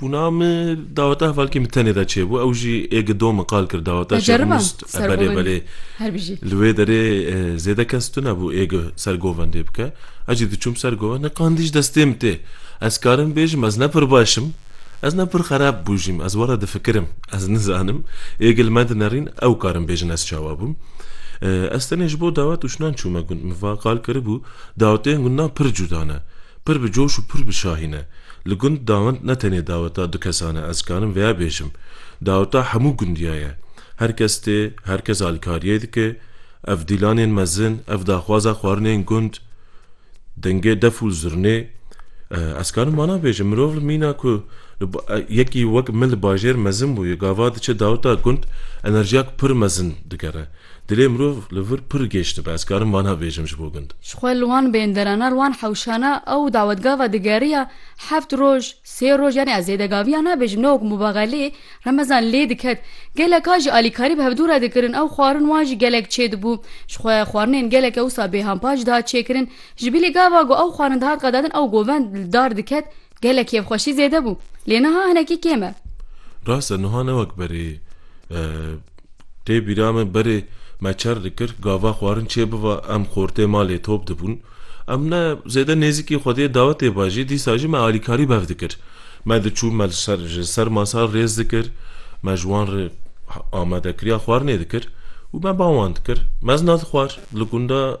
Bûna min daweta hevalkê min tenê de çêbû, ew jî ê gido min qal kir daweta Te jeriba Şêxmûs belê sergovendê belê her bijî. li wê derê e, zêde kes tunebû ê gi sergovendê bike. Ez jî diçûm ser govend ne qandî ji destê min tê. Ez karim bêjim ez ne pir baş im, ez ne pir xerab bûjîm, ez were difikirim, ez nizanim ê gi li me dinerîn ew karim bêjin ez çawa bûm. E, Ez tenê ji bo dawet û şinan çûme gund. Min va qal kiribû dawetên gundan pir cuda ne. Pir bi coş û pir bi şahî ne. Li gund dawind ne tenê daweta du kesan e, ez dikarim veya bêjim. Daweta hemû gundiya ye. Her kes tê, her kes alîkariyê dike. Ev dîlanên mezin, ev daxwaza xwarinên gund, dengê def û zurnê. Ez dikarim wana bêjim. Mirov li mîna ku yekî wek min li bajêr mezin bûye, gava diçe daweta gund enerjiyak pir mezin digere. Dilê mirov li vir pir gêj dibe, ez karim vana bêjim ji bo gund. Ji xwe li wan bênderana, li wan hewşana ew dawetgava digeriya heft roj, sê roj yanî ez zêdegaviya nabêjim ne wek mubaxelê, remezan lê diket. Geleka jî alîkarî bi hevdû re dikirin, ew xwarin wan jî gelek çêdibû. Ji xwe xwarinên gelek ewsa bêhampa jî dihat çêkirin. Ji bilî gava ku ew xwarin dihat qedadin ew govend li dar diket, Gelek kêfxweşî zêde bû. Lê niha hinekî kêm e. Rast e niha ne wek berê. Tê bîra min berê me çer dikir gava xwarin çê biva em xortê malê top dibûn. Em ne zêde nêzîkî xwediyê dawetê ba jî dîsa jî me alîkarî bev dikir. Me diçûn me li ser ji ser masa rêz dikir. Me ji wan re amadekiriya xwarinê dikir û me ba wan dikir. Mezna dixwar li gunda.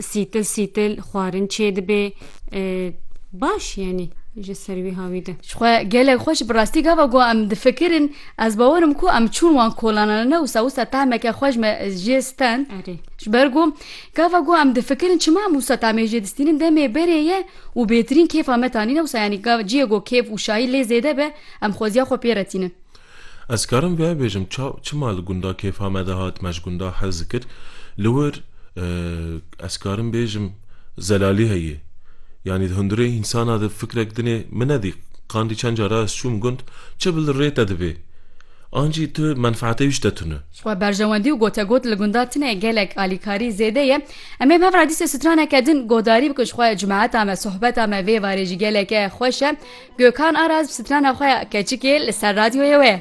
Sîtil sîtil xwarin çêdibê. Baş yanî ji ser wî ha wî de. Ji xwe gelek xweş bi rastî gava ku em difikirin ez bawer im ku em çûn wan kolanan ne wisa wisa tahmeke xweş me jê stand Erê. ji ber ku gava ku em difikirin çima em wisa tahmê jê distînin demê berê ye û bêtirîn kêfa me tanî ne wisa yanî ciyê ku kêf û şayî lê zêde be em xweziya xwe pê retînin. Ez karim vê bêjim çav çima li gunda kêfa me de hat me ji gunda hez dikir li wir ez karim bêjim zelalî heye yanî di hundirê însana de fikrek dinê min nedî qandî çend cara ez çûm gund çi bi li rê te divê ancî tu menfaetê wî ji te tune. Xwe berjewendî û gotegot li gunda tune gelek alîkarî zêde ye em ê bi hev re dîsê straneke din godarî bikin ji xwe cimeheta me sohbeta me vê varê jî geleke xweş e Gökhan Aras bi strana xwe ya keçikê li ser radyoyê wê.